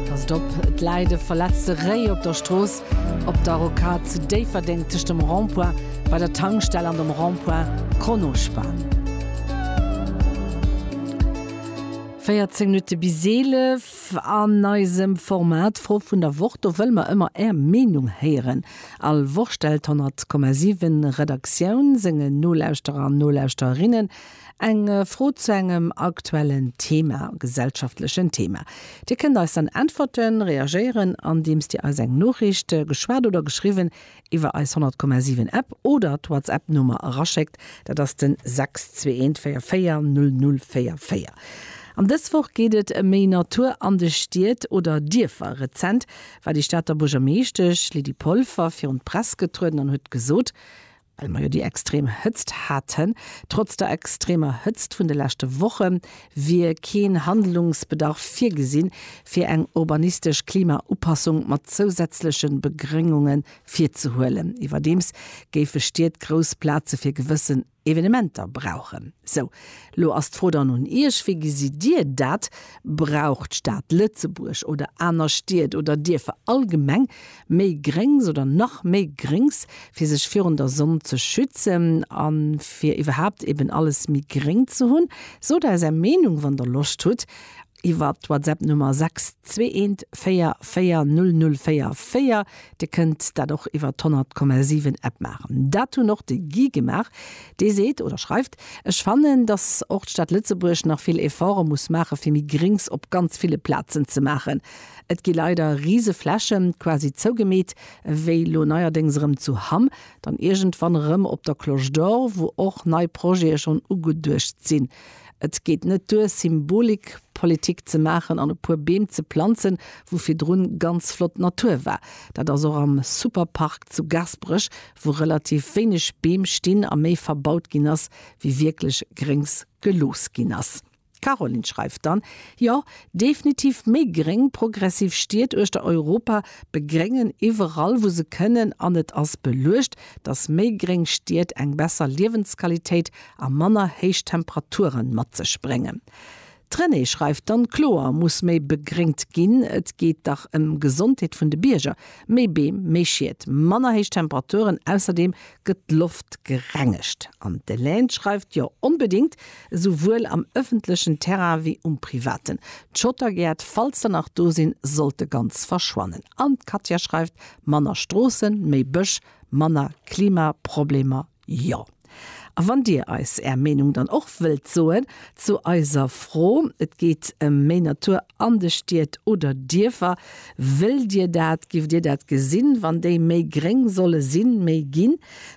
Passt op, et läit e verletzte Réi op der Strooss op der Rocade zu Déifferdeng tëscht dem Rond-point bei der Tankstell an dem Rond-point Kronospan. 14 Minutte bis 11 an eisem Format d'Fro vun der Woch. Do wëlle mer ëmmer Är Meenung héieren. All Woch stellt d'100,7 Redaktioun sengen Nolauschterer an Nolauschterinnen Eng Fro zu engem aktuellen Thema, gesellschaftlechen Thema. Dir kënnt eis dann äntwerten, reagéieren, andeems Dir eis eng Noriicht, geschwat oder geschriwwen, iwwer eis 100,7 App oder d'Whatsapp Nummer eraschéckt, dat ass den 621440044. An dës Woch geet et ëm méi Natur an de Stied oder Dierfer. Rezent war déi Stater Buergermeeschtesch Lydie Polfer virun d'Press getrueden an huet gesot, Well mer jo déi extrem Hëtzt haten. Trotz der extremer Hëtzt vun de leschte Woche wier keen Handlungsbedarf virgesinn, fir eng urbanistesch Klimaupassung mat zousätzleche Begréngunge virzehuelen. Iwwerdeems géife Stied grouss Plaze fir gewëssen Evenementer brauchen. Sou, lo ass d'Fro dann un Iech, Wéi gesitt Dir dat? Brauch d'Stad Lëtzebuerg oder aner Stied oder Dierfer allgemeng méi Gréngs oder nach méi Gréngs, fir sech virun der Sonn ze schützen a fir iwwerhaapt eben alles méi gréng ze hunn. Sot eis Är Meenung, wann Der Loscht hutt, iwwer d'Whatsapp-Nummer 6214400444. Dir kënnt dat och iwwer d'100,7-App maachen. Dat hunn och de Guy gemaach. Dee seet oder schreift, Ech fannen, datt och d'Stad Lëtzebuerg nach vill Efforte muss maachen, fir méi Gréngs op ganz ville Plazen ze maachen. Et gi leider rise Flächen, quasi zougemeet, wéi lo neierdéngs erëm zu Hamm, dann iergendwann erëm op der Cloche d'Or, wou och nei Projete schonn ugeduecht sinn. Et geet net duer, Symbolikpolitik ze maachen an e puer Beem ze planzen, wou virdrun ganz flott Natur war. Dat ass och am Superpark zu Gaasperech, wou relativ wéineg Beem stinn a méi verbaut ginn ass, wéi wierklech Gréngs gelooss ginn ass. D'Caroline schreift dann, Jo, definitiv méi gréng, progressiv Stied uechter Europa begréngen iwwerall wou se kënnen an et ass beluecht, datt méi gréng Stied eng besser Liewensqualitéit a manner héich Temperature mat sech bréngen. D'Renée schreift dann, Kloer muss méi begréngt ginn, et geet dach ëm Gesondheet vun de Bierger, méi Beem, méi Schied, manner héich Temperaturen, ausserdeem gëtt d'Loft gerengegt. An d'Elaine schreift, Jo, onbedéngt, esouwuel am ëffentlechen Terrain wéi um privaten. D'Schottergäert, falls se nach do sinn, sollte ganz verschwannen. An d'Katja schreift, Manner Stroossen, méi Bësch, manner Klimaproblemer, jo. A wann Dir eis Är Meenung dann och wëllt soen zu eiser Fro, et geet ëm méi Natur an de Stied oder Dierfer, wëllt Dir dat, giff Dir dat gesinn, wann déi méi gréng solle sinn, méi ginn?